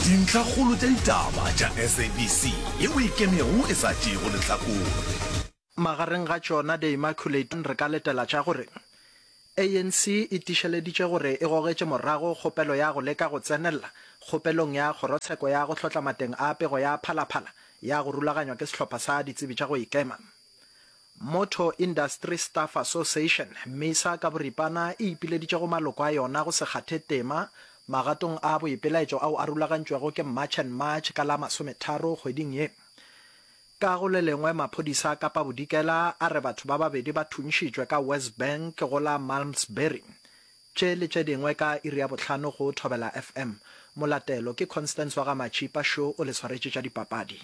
Dintlhakgolo tša ditaba tša SABC ye o e kemego e sa tšeego lehlakore. Magareng ga tšona The Immaculate re ka letela tša gore, ANC e tišeleditše gore e gogetše morago kgopelo ya go leka go tsenelela kgopelong ya kgorotsheko ya go hlotla mateng a pego ya phalaphala ya go rulaganywa ke sehlopha sa ditsebi tša go ikema. Motor Industry Staff Association, Misa, ka boripana e ipileditše go maloko a yona go se kgathe tema magatong a boipelaetšo ao a rulagantšwego ke March and March ka la masometharo kgweding ye. Ka go le lengwe, maphodisa a Kapa Bodikela a re batho ba babedi ba thuntšhitšwe ka Westbank go la Malmsbury. Tše le tše dingwe ka iri ya bohlano go Thobela FM. Molatelo ke Constance wa ga Matšhipa Show o le swaretše tša dipapadi.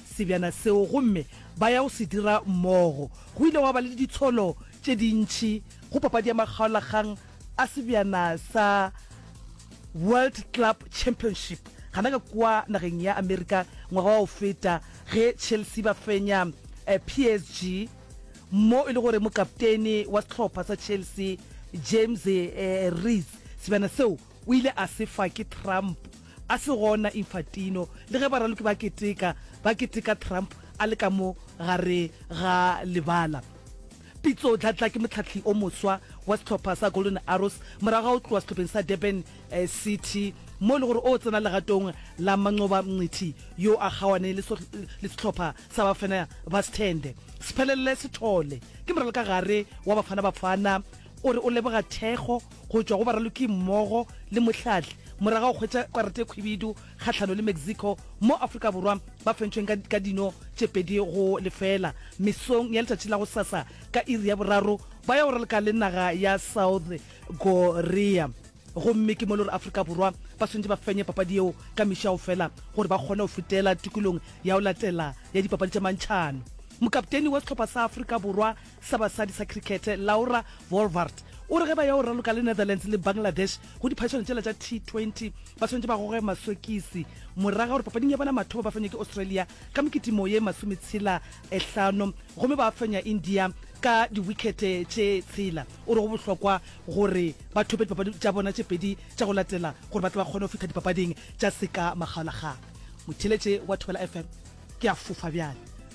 sebjana seo gomme ba ya go se dira mmogo. Go ile gwa ba le ditsholo tše dintši go papadi ya makgaolakgang a sebjana sa World Club Championship gana ka kua nageng ya Amerika ngwaga wa go feta ge Chelsea ba fenya PSG mo e le gore mokaptene wa sehlopha sa Chelsea James Reece sebjana seo O ile a se fa ke Trump, a se gona Infantino, le ge baraloki ba keteka, ba keteka Trump a le ka mo gare ga lebala. Pitso Dladla ke mohlahli o moswa wa sehlopha sa Golden Arrows morago ga go tlowa sehlopheng sa Durban City mo e le gore o tsena legatong la Manqoba Mngqithi yo a kgawane le sehlopha sa Bafana Ba Sithende. Siphelele Sithole ke moralokagare wa Bafana Bafana O re o leboga thekgo go tšwa go baralokimmogo le mohlahli morago ga go hwetša karata e khwibidu kgahlano le Mexico moo Afrika Borwa ba fentšweng ka, ka dino tše pedi go lefela. Mesong ya letšatši la gosasa ka iri ya boraro ba ya go ralka le naga ya South Korea gomme ke mo e le gore Afrika Borwa ba swanetše ba fenye papadi yeo ka mešago fela gore ba kgone go fetela tukulong ya go latela ya dipapadi tša mantšhano. Mokapteini wa sehlopha sa Afrika Borwa, sa basadi sa crickete Laura Wolvaardt o re ge ba ya go raloka le Netherlands le Bangladesh go diphadišano tšela tša T20 ba swanetše ba goge masokisi morago ga gore papading ya bona mathomo ba fenywe ke Australia ka mokitimo ye masometshela e hlano gomme ba fenya India ka diwikete tše tshela. O re go bohlokwa gore ba thope dipapadi tša bona tše pedi tša go latela gore ba tle ba kgone go fihla dipapading tša seka makgaolakgang. Motheeletše wa Thobela FM ke a fofa bjale.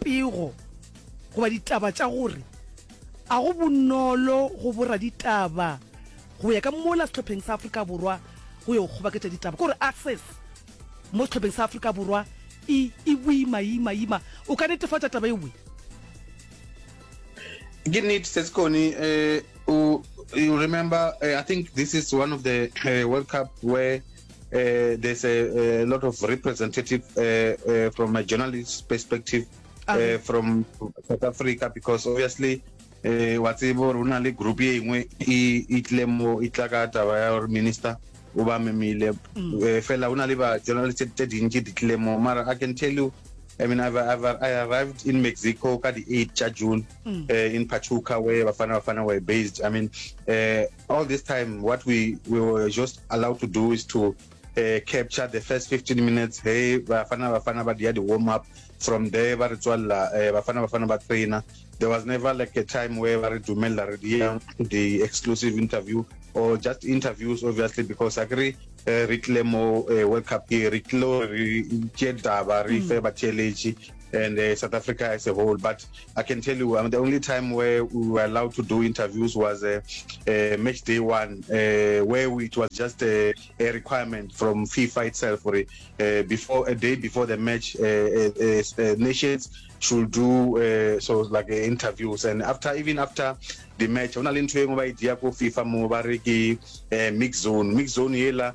Pego goba ditaba tša gore a go bonolo go boraditaba go ya ka mola sehlopheng sa Afrika Borwa go yo kgobaketša ditaba ke gore access mo sehlopheng sa Afrika Borwa e e boimayimayima. O ka netefatša taba ewe? Ke nnete se se kone um you remember uh, i think this is one of the uh, world cup where Uh, there's a, a, lot of representative uh, uh, from a journalist perspective uh, okay. from South Africa because obviously uh, wa tsebo rona le group ye nngwe e tle mo e tla ka taba ya gore minister o ba memile mm. uh, fela o na le ba journalist tse dintši di tle mo mara i can tell you I mean, I've, I've, I arrived in Mexico at the 8th of June mm. uh, in Pachuca, where Bafana Bafana were based. I mean, uh, All this time, what we, we were just allowed to do is to uh, capture the first 15 minutes. Hey, Bafana Bafana but the warm up. From there, ba re tswalla eh, Bafana Bafana ba trainer. There was never like a time where ba re dumella re the exclusive interview or just interviews, obviously, because I agree eh, re tlile mo eh, World Cup ke re tlilo re tše taba re fe mm. batheeletši and uh, South Africa as a whole. But I can tell you, I mean, the only time where we were allowed to do interviews was uh, uh, match day one, uh, where we, it was just a, a, requirement from FIFA itself for it. Uh, before a day before the match, uh, nations should do uh, so like uh, interviews and after even after the match ona le ntho e nngwe ba e dia ko fifa mo ba re ke uh, mix zone mix zone ela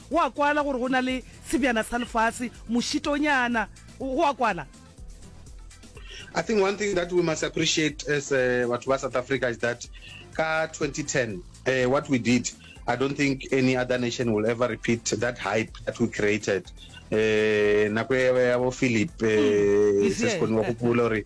Go a kwala gore go na le sebjana sa lefase, mošitonyana. Go a kwala. I think one thing that we must appreciate as uh, batho ba South Africa is that ka 2010 uh, what we did I don't think any other nation will ever repeat that hype that we created uh, nako ya bo Philip uh, mm, se se kgone go gopola gore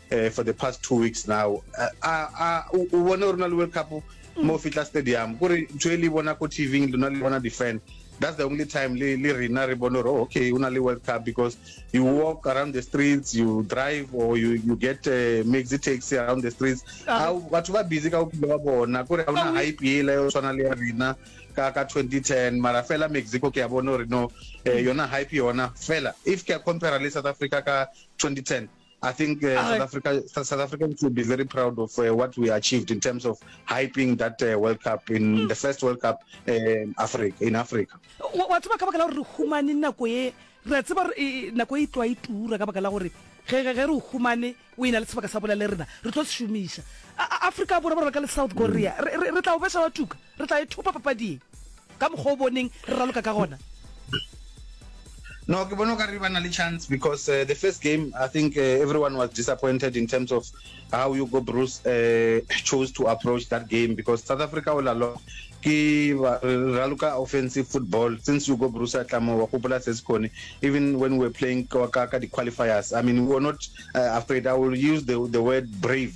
eh, for the past two weeks now a a o bone gore na le world cup mm. mo fitla stadium gore ntho e le bona ko tv lona le bona di-fan that's the only time le le rena re bone gore oh, okay o na le world cup because you walk around the streets you drive or you, you get uh, maxi taxi around the streets ah. batho ba busy ka bophelo ba bona kore ga ona hype ele o tshwana le ya rena ka ka 2010 mara fela mexico ke a bone gore no eh, yona hype yona fela if ke a compare le south africa ka 2010 I think uh, South Africa, South Africans should be very proud of uh, what we achieved in terms of hyping that uh, World Cup in mm. the first World Cup uh, in Africa. In Africa. Wa tseba ka baka la gore re humane nako e re tseba e, nako e tlwa e tura ka baka la gore ge re o humane o ena le sebaka sa bola le rena re tlo se šomiša Africa borwa ba reka le South Korea mm. re tla o besa wa tuka re tla e thopa papading Ka mokgwa o boneng re raloka ka gona. No, ke bona o ka re ba na le chance because uh, the first game I think uh, everyone was disappointed in terms of how Hugo Broos uh, chose to approach that game because South Africa all along ke raloka offensive football since Hugo Broos a tlamo wa gopola se sekone even when we were playing ka ka di qualifiers I mean we were not uh, afraid I will use the the word brave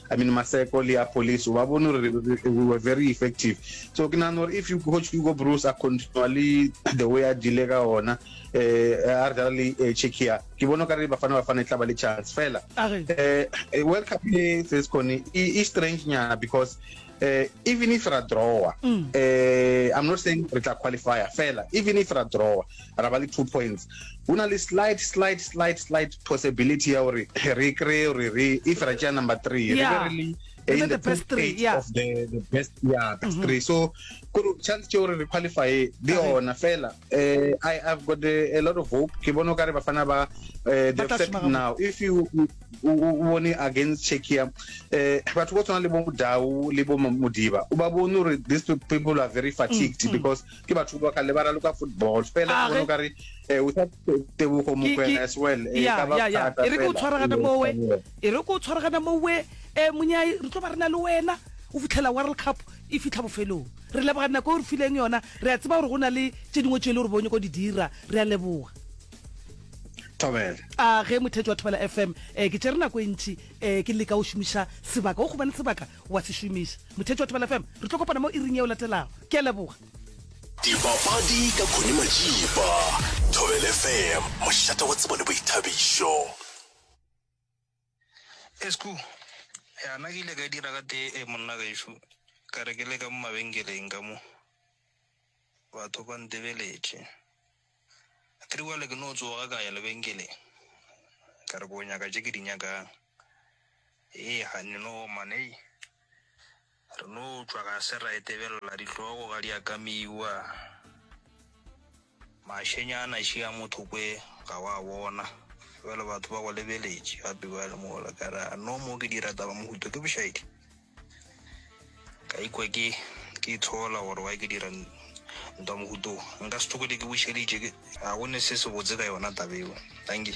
I mean Maseko le ya police o ba bone gore we were very effective so ke nagana gore if you coach Hugo Broos a continua le the way a dile ka ona eh a re dala le eh, Czechia ke bona ka re Bafana Bafana e tla ba le chance fela A re? eh eh, World Cup le Sescone e e strange nyana because Uh, even if ra drawer mm. uh, i'm not saying re tla qualifier fela even if ra drawer ra ba le two points go na le slight slight slight slight possibility ya gore re kry gore re if ra tšea number three re be re le in the, best three yeah. of the, the best yeah best mm-hmm. three so kuru chance tšeo re qualify le yona fela uh, i have got a, a lot of hope ke bone o ka re bafana ba uh, they've set now if you o bone against Czechia eh batho ba tshwana le bo Dau le bo Modiba o ba bone gore these people are very fatigued mm, mm. because ke batho ba ka le ba raloka football fela o bone ka re eh o sa tebogo mokwena as well e ka ba thata e re go tshwaragana mowe e re go tshwaragana mowe eh monyai re tlo ba rena le wena o fitlhela world cup e fitlha bofelong re leboga nako o re fileng yona re a tseba gore go na le tse dingwe tse e le gore bo nyako di dira re a leboga Thobela. A ge mothetši wa Thobela FM, eh, ke tšere nako e ntši, eh, ke leka go šomiša sebaka, o gobane sebaka wa se šomiša. Mothetši wa Thobela FM, re tlo kopana mo iring yeo latelago. Ke a leboga. Dipapadi ka Connie Majiba. Thobela FM, mošate wa tsebo le boithabišo. Esku, Ya, nna ke ile ka dira ka tee e, monna gešo, ka re ke le ka mo mabenkeleng ka mo, batho ba ntebeletše. Ke re bjale ke no tsoga ka ya lebenkeleng, ka re ke o nyaka tše ke di nyakang. Hei, kganni, no oma, hei. Re no tšwa ga se ra etebelela dihlogo ga di a ka miwa. Mašenyana še a motho kwe ga wa bona. Bjale batho ba go lebeletše gape bjale mola ka re a no mo ke dira taba mohuta ke bošaedi. Ka ikwa ke ke itshola gore why ke dira ntwa mohuta wo. Nka se tokele ke bušeditše ke a go ne se se botse ka yona taba yeo. Dankie.